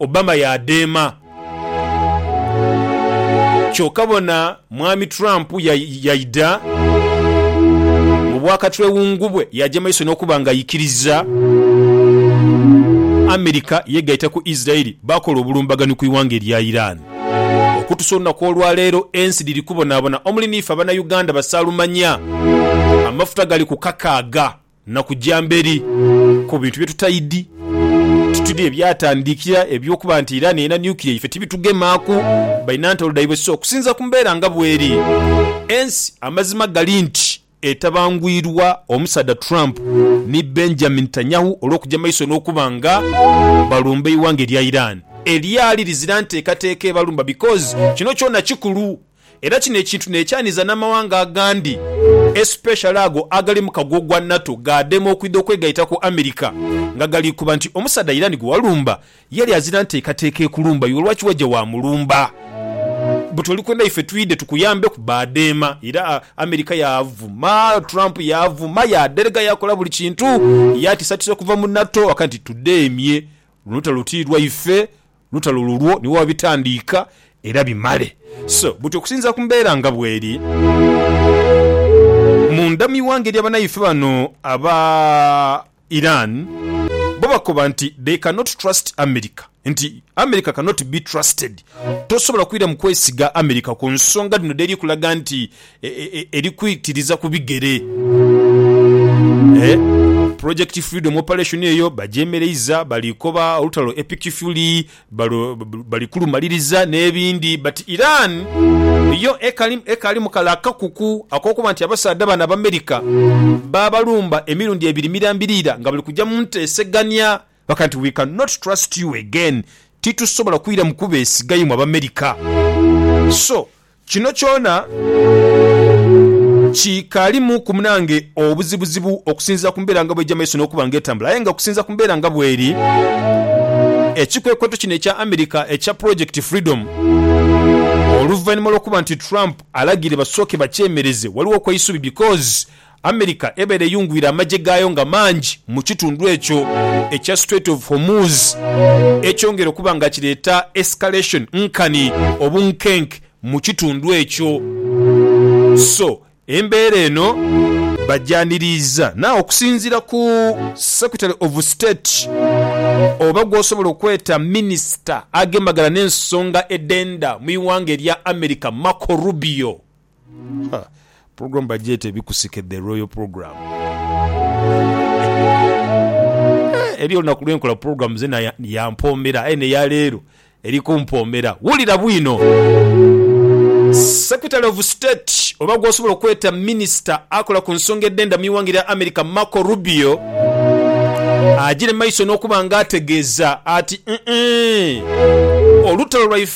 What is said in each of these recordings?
Obama yaadheema. Kyoka bona Mwami Trump yaidha mu bwakatwewungu bwe yaaja maiso n'okuba ng'aikiriza America yegaita ku Israel baakola obulumbaganhi ku ighanga erya Iran. Okutusa olunaku olwaleero ensi dhiri kubonaabona omuli n'ife Abanauganda basaalumanya amafuta gali ku kakaaga. na kuja mberi ku bintu bye tutaidhi tutidhi ebyatandikira eby'okuba nti Iran erina nuclear ife tibitugemaaku, balina ntalo dhaibwe so okusinziira ku mbeera nga bweri ensi amazima gali nti etabangwirwa omusaadha Trump ni Benjamin Netanyahu olw'okuja maiso n'okuba nga balumba eighanga erya Iran elyali lizira nteekateeka ebalumba because kino kyona kikulu. Era kino ekintu nekyaniza namawanga agandi especially ago agali mukago gwa NATO gadema okwidha okwegaita ku America nga galikuba nti omusaadha Iran gwewalumba yali azira ntekateka ekulumba iwe lwaki waja wamulumba but olikwenda ife twidhe tukuyambeku badema era America yavuma Trump yavuma yaderega yakola buli kintu yatisatisa okuva mu NATO waka nti tudemye luno olutalo tilwaife lutalo lulwo niwo abitandiika era bimale. So buti okusinziira ku mbeera nga bweri munda mu ighanga erya banaife bano aba Iran bo bakoba nti they cannot trust America nti America cannot be trusted tosobola kwira mu kwesiga America ku nsonga dhino dheri kulaga nti eri kwitiriza ku bigere. Project Freedom Operation eyo bagyemereiza, bali koba olutalo e Pikifuli, bali kulumaliriza n'ebindi but Iran yo ekaalimu kale akakuku ak'okuba nti abasaadha bano Abamerika baabalumba emirundi ebiri mirambiriira nga bali kuja mu nteesegania bakaga nti, We can not trust you again, titusobola kwiramu kubeesiga imwe Abamerika. So. Kino kyona kikalimu ku munange obuzibuzibu okusinziira ku mbeera nga bw'eja mu maiso n'okuba nga etambula. Aye nga okusinziira ku mbeera nga bw'eri, ekikwekweto kino ekya America ekya Project Freedom, oluvainhuma lw'okuba nti Trump alagiire basooke bakyemereze, waliwo kw'eisubi because America ebaire eyungwire amagye gaayo nga mangi mu kitundu ekyo ekya Strait of Hormuz, ekyongera okuba nga kireeta escalation nkani obunkenke mu kitundu ekyo. So embeera eno. Bagyaniriiza na okusinziira ku Secretary of State oba gwosobola okweta minister agemagana n'ensonga edh'endha mu ighanga erya America Marco Rubio. Program bagyeta ebikusike the royal program eri olunaku lwenkola program zena yampoomera aye neya leero eri kumpoomera wulira bwino Secretary of State oba gwosobola okweta minister akola ku nsonga edhenda mwiwanga erya America Marco Rubio agyire maiso nokuba nga ategeeza ati, Olutalo lwaife.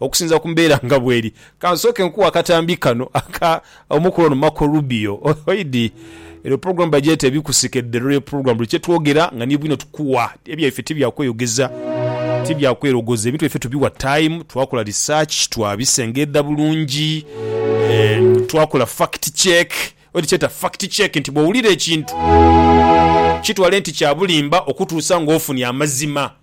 Okusinzira ku mbeera nga bweri, ka nsooke nkuwe akatambi kano aka omukulu ono Marco Rubio. Oidhi, eno pulogulaamu bagyeta Ebikusike, The Royal Program. Buli kye twogera nga ni bwino tukuwa. Ebyaife ti bya kweyogeza, ti bya kwerogoza. Ebintu byaife tubiwa time, twakola research, twabisengedha bulungi, twakola fact check. Oidhi kyeta fact check nti bw'owulira ekintu kitwale nti kya bulimba okutuusa ng'ofunye amazima.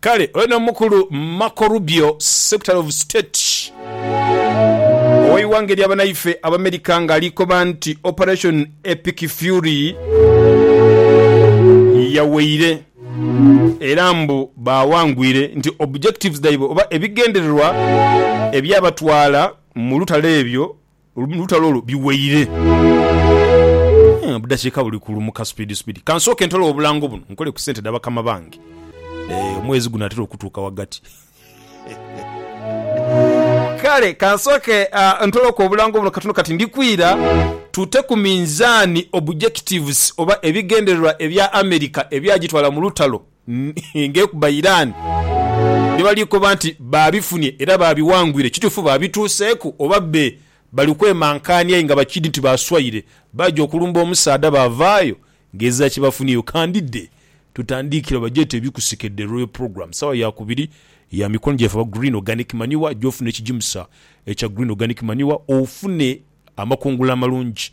Kale ono omukulu Marco Rubio, Secretary of State ow'eighanga erya banaife Abamerika nga ali koba nti Operation Epic Fury yaweire era mbu baawangwire nti objectives dhaibwe oba ebigendererwa ebyabatwala mu lutalo ebyo Olutalo olwo biweire. Obudakiika buli kulumuka supiidi supiidi. Ka nsooke ntole obulango buno nkole ku sente dha bakama bange. Eeh, omwezi gunatera okutuuka ghagati. Kale ka nsooke ntoloke obulango buno katono kati ndi kwira. Tute ku minzaani objectives oba ebigendererwa ebya America ebyagitwala mu lutalo. ng'ekuba Iran bye bali koba nti baabifunye era baabiwangwire, kituufu baabituuseeku oba bbe bali kwemankaania aye nga bakidhi nti baaswaire baaja okulumba omusaadha baavaayo ng'ezira kye bafunyeyo. Kandidde tutandiikire oba gyete ebikusike The Royal Programme saawa ya kubiri ya mikono gyaife aba Green Organic Manure gy'ofuna ekigimusa ekya Green Organic Manure ofune amakungula amalungi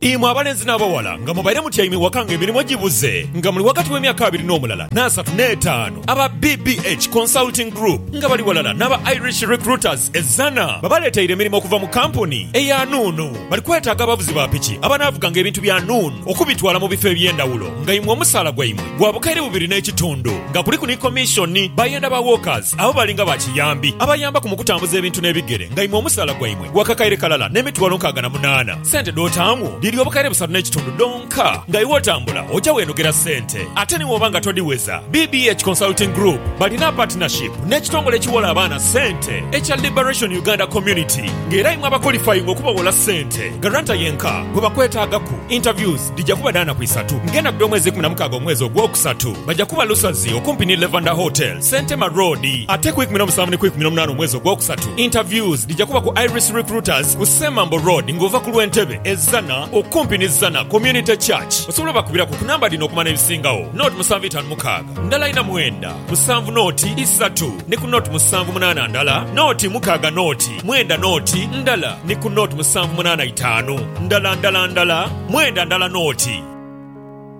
Imwe abalenzi n'abawala nga mubaire mutyaime ewaka nga emirimu gibuze nga muli ghagati w'emyaka abiri n'omulala n'asatu n'etaanu, aba BBH Consulting Group nga bali ghalala n'aba Irish Recruiters e Zzana babaleeteire emirimu okuva mu kampuni eya Nuun. Bali kwetaaga abavuzi ba piki abanaavuganga ebintu bya Nuun okubitwala mu bifo eby'endhawulo nga imwe omusaala gwaimwe gwa bukaire bubiri n'ekitundu nga kuliku ni komishoni. Bayenda ba walkers abo bali nga ba kiyambi abayambaku mu kutambuza ebintu n'ebigere nga imwe omusaala gwaimwe Gwa kakaire kalala n'emitwalo nkaaga na munaana. Sente dh'otaamu dhiri obukaire busatu n'ekitundu dhonka. Nga iwe otambula, oja weenogera sente. Ate ni bw'oba nga todhiweza, BBH Consulting Group balina partnership n'ekitongole ekiwola abaana sente ekya Liberation Uganda Community nga era imwe abakolifayinga okubawola sente. Guarantor yenka gwe bakwetaagaku. Interviews dhija kuba dha naku isatu ng'endaghulo omwezi ikumi na mukaaga omwezi ogwokusatu. Baja kuba Lusazi okumpi ni Levander Hotels. Sentema Road ate ku ikumi n'omusanvu ni ku ikumi n'omunaana omwezi ogwokusatu interviews dhija kuba ku Iris Recruiters ku Semambo Road nga ova ku lw'e Ntebe e Zzana okumpi ni Zzana Community Church. Osobola obakubiraku ku namba dhino okumanya ebisingagho, nought musanvu itaanu mukaaga ndala ina mwenda musanvu nought isatu ni ku nought musanvu munaana ndala nought mukaaga nought mwenda nought ndala ni ku nought musanvu munaana itaanu ndala ndala ndala mwenda ndala nought.